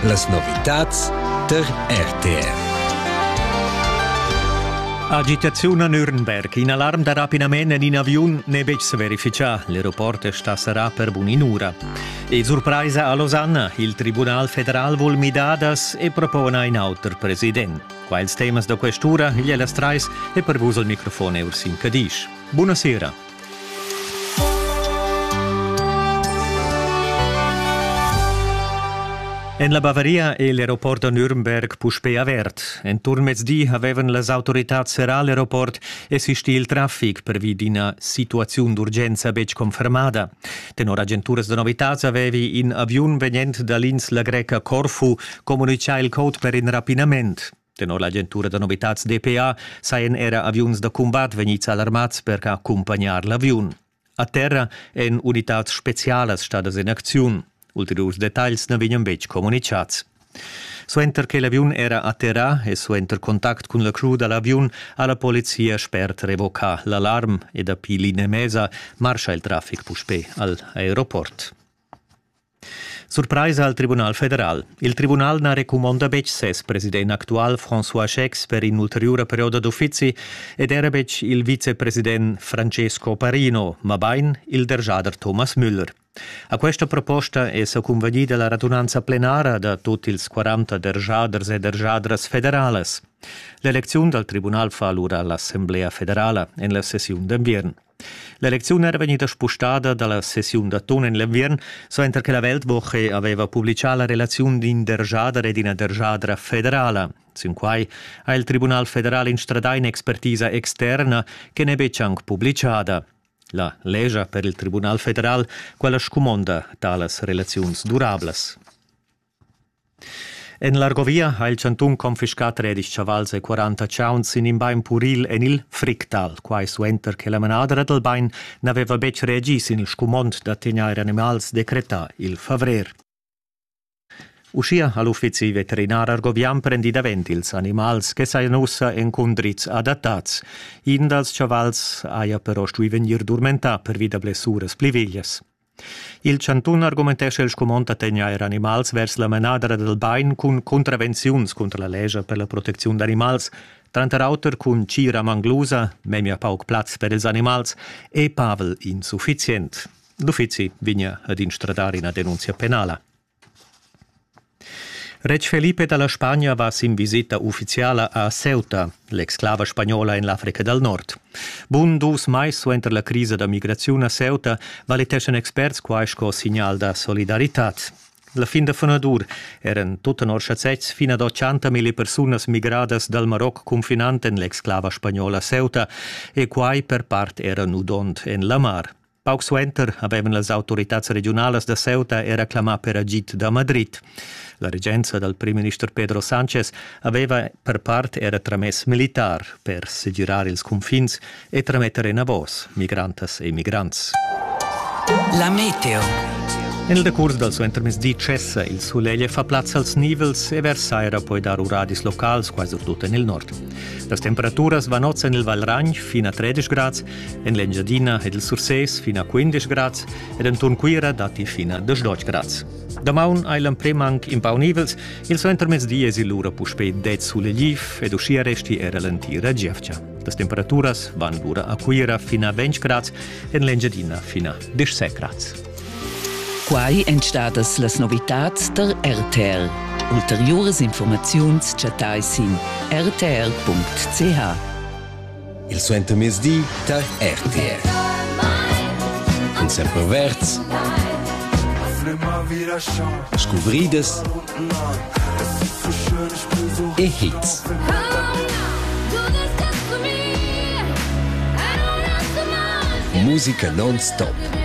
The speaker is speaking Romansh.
Las novitads tar RTR. Agitaziun a Nürnberg. In alarm da rapinament en in aviun n'è betg sa verifichà. L'aeroport sta serrà per bun'in'ura. E surpraisa a Losanna. Il Tribunal federal vul midadas e propona in auter president. Qua ils temas da quest'ura, igl è las trais e per vus il microfon è Ursin Cadisch. Buonasera. En la Bavaria è l'aeroport da Nürnberg puspè avert. Enturn mezdi avevan las autoritads serrà l'aeroport e sistì il traffic pervi d'ina situaziun d'urgenza betg confermada. Tenor agenturas da novitads avevi in aviun vegnent da l'insla greca Corfu communitgà il code per in rapinament. Tenor l'agentura da novitads DPA sajan era aviuns da cumbat vegnids alarmads per accumpagnar l'aviun. A terra èn unitads spezialas stadas en acziun. Ulteriurs detagls na vegnan betg communicads. Suenter che l'aviun era atterrà e suenter contact cun la crew da l'aviun ha la polizia spert revocà l'alarm e dapi l'inemesa marscha il traffic puspè al aeroport. Surpraisa al Tribunal federal. Il tribunal na recumonda betg ses president actual François Schex per in'ulteriura perioda d'uffizi ed era betg il vicepresident Francesco Parino, mabain il derschader Thomas Müller. A questa proposta è sa convegnida la radunanza plenara da tut ils 40 derschaders e derschadras federalas. L'elecziun dal tribunal fa alura l'Assemblea federala en la sessiun d'enviern. L'elecziun era vegnida spustada dalla sessiun da ton en l'enviern, suenter che la Weltwoche aveva publicà la relaziun d'in dergiader ed ina dergiadra federala. Sin quai ha il Tribunal federal instradà in'expertisa externa che n'è betg anc publicada. La legia per il Tribunal federal, quella scumonda talas relaziuns durablas. En l'Argovia ha il chantun confiscà tredisch chavals e quaranta chauns sin in bain puril en il Fricktal, quai suenter che la manadra dal bain n'aveva betg reagì sin il scumond da tegnair animals decretà il favrer. Uschia ha l'uffizi veterinar argovian prendì davent ils animals che sajan ussa en cundriz adattads. In dals chavals haja però stuì vegnir durmentà pervi da blessuras pli veglias. Il chantun argumentescha il scumond da tegnair animals vers la manadra dal bain cun contravenziuns cunter la lescha per la protecziun d'animals, tranter auter cun tgira manglusa, memia pauc plaz per ils animals e pavel insuffizient. L'uffizi vegnia ad instradar ina denunzia penala. Retg Felipe dalla Spagna va sin visita ufficiala a Ceuta, l'exclava spagnola en l'Africa dal Nord. Bun dus mais suenter la crisa da migraziun a Ceuta valiteschan experts quai sco signal da solidaritad. La fin da funadur eran tut tenor schazetgs fin ad 80.000 persunas migradas dal Maroc confinant en l'exclava spagnola Ceuta e quai per part era nudond en la mar. Pauc suenter havevan las autoritads regiunalas da Ceuta era clamà per agid da Madrid. La regenza dal primminister Pedro Sánchez aveva per part era tramess militar per segirar ils confins e trametter enavos migrantas e migrants. La meteo. En il decurs dal suentermezzdi cessa il sulegl e fa plaz als nivels e vers saira poi dar uradis locals quasi tut en il nord. Las temperaturas van oz en il Valragn fin a 13 grads En l'Engiadina è il Sursés fin a 15 grads ed enturn Cuira datti fin a 18 grads. Damaun hai l'emprim anc impaunivels, il suentermezdi esi lura puspè dez sulegliv ed uschia resti era l'entira gievgia. Las temperaturas van lura a Cuira fin a 20 grads, en l'Engiadina fin a 17 grads. Quai èn stadas las novitads der RTL. Ulteriuras informaziuns chattai sin rtl.ch. Il suentermezdi tar RTR. Cun semperverds. Scuvridas. E hits. Musica non-stop.